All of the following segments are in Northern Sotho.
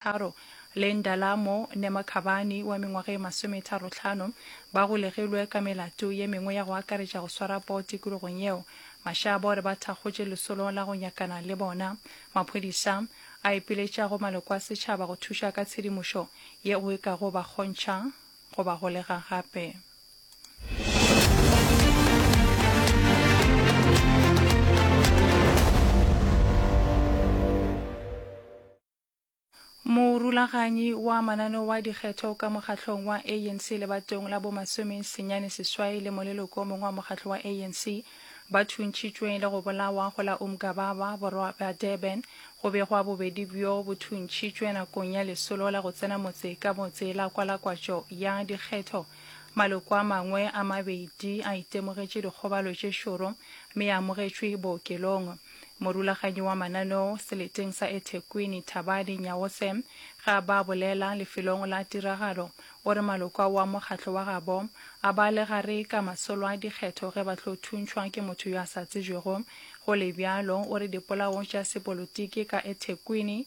Tharo, le Ndalamo Nemakhabani wa mengwaga e masometharotlhano, ba golegilwe ka melato ye mengwe ya go akaretša go swara poo tikologong yeo. Mashaba o re ba thakgotše lesolo la go nyakana le bona. Maphodisa a ipiletša go maloko a setšhaba go thuša ka tshedimošo yeo e kago ba kgontšha go ba golega gape. Morulaganyi wa mananeo wa dikgetho ka mokgahlong wa ANC lebatong la bomasome senyane seswai le moleloko o mongwe wa mokgahlong wa ANC ba thuntšitšwe le go bolawa go la Umgababa, borwa bja Durban, go begwa bobedi bjo bo thuntšitšwe nakong ya lesolo la go tsena motse ka motse la kwalakwatšo ya dikgetho. Maloko a mangwe a mabedi a itemogetše dikgobalo tše šoro mme a amogetšwe bookelong. Morulaganyi wa mananeo seleteng sa eThekwini, Thabani Nyawose, ge a ba bolela lefelong la tiragalo, o re maloko ao a mokgatlo wa gabo a ba le gare ka masolo a dikgetho ge ba tlo thuntšhwa ke motho yo a sa tsebjwego. Go le bjalo, o re dipolao tša sepolotiki ka eThekwini,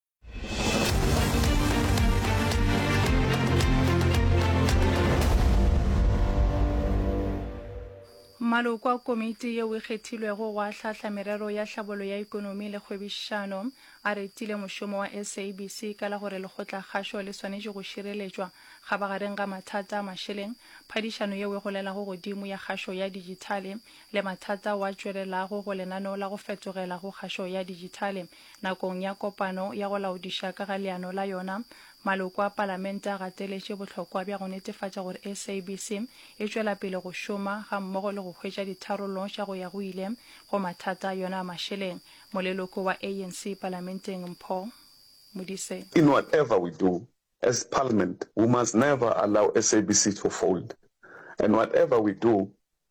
maloko a komiti yeo e kgethilwego go ahlahla merero ya tlhabolo ya ikonomi le kgwebišano a retile mošomo wa sabc ka la gore lekgotlakgašo le swanetše go šireletšwa ga bagareng ga mathata a mašeleng phadišano yeo e golelago godimo ya kgašo ya dijithale le mathata wa tšwelelago go lenaneo la go fetogela go kgašo ya dijithale Nakong ya kopano ya go laodiša ka ga leano la yona, maloko a Palamente a gateletše bohlokwa bja go netefatša gore SABC e tšwela pele go šoma gammogo le go hwetša ditharollo tša go ya go ile go mathata a yona a mašeleng. Moleloko wa ANC Palamenteng Mpho Modise. In whatever we do as Parliament we must never allow SABC to fold and whatever we do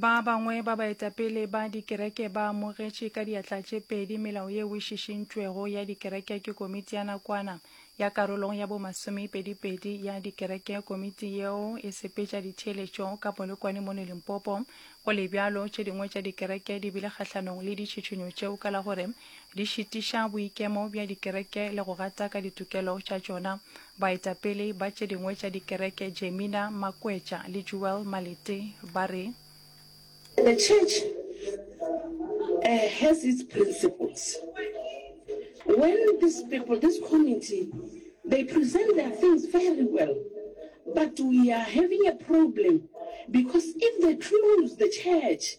Ba bangwe ba baetapele ba dikereke ba amogetše ka diatla tše pedi melao yeo e šišintšwego ya dikereke ke komiti ya nakwana ya karolong ya bomasomepedipedi ya dikereke. Komiti yeo e sepetša ditheeletšo ka Polokwane mono Limpopo. Go le bjalo, tše dingwe tša dikereke di bile kgahlanong le ditšhitšhinyo tšeo ka la gore di šitiša boikemo bja dikereke le go gata ka ditokelo tša tšona. Baetapele ba tše dingwe tša dikereke Jemina Makwetša le Jewel Malete ba re. The church has its principles. When these people, this committee, they present their things very well but we are having a problem because if they close the church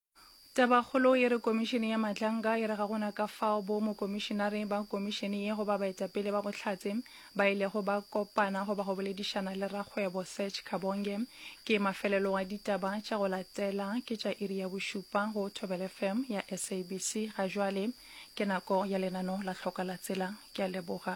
Tabakgolo e re Komišene ya Matlanka e re ga go na ka fao bo mokomišenare ba komišene ye goba baetapele ba Bohlatse ba ilego ba kopana goba go boledišana le rakgwebo Serge Kabonge. Ke mafelelo a ditaba tša go latela ke tša iri ya bošupa go Thobela FM ya SABC ga jwale. Ke nako ya lenano la Hlokalatsela. Ke a leboga.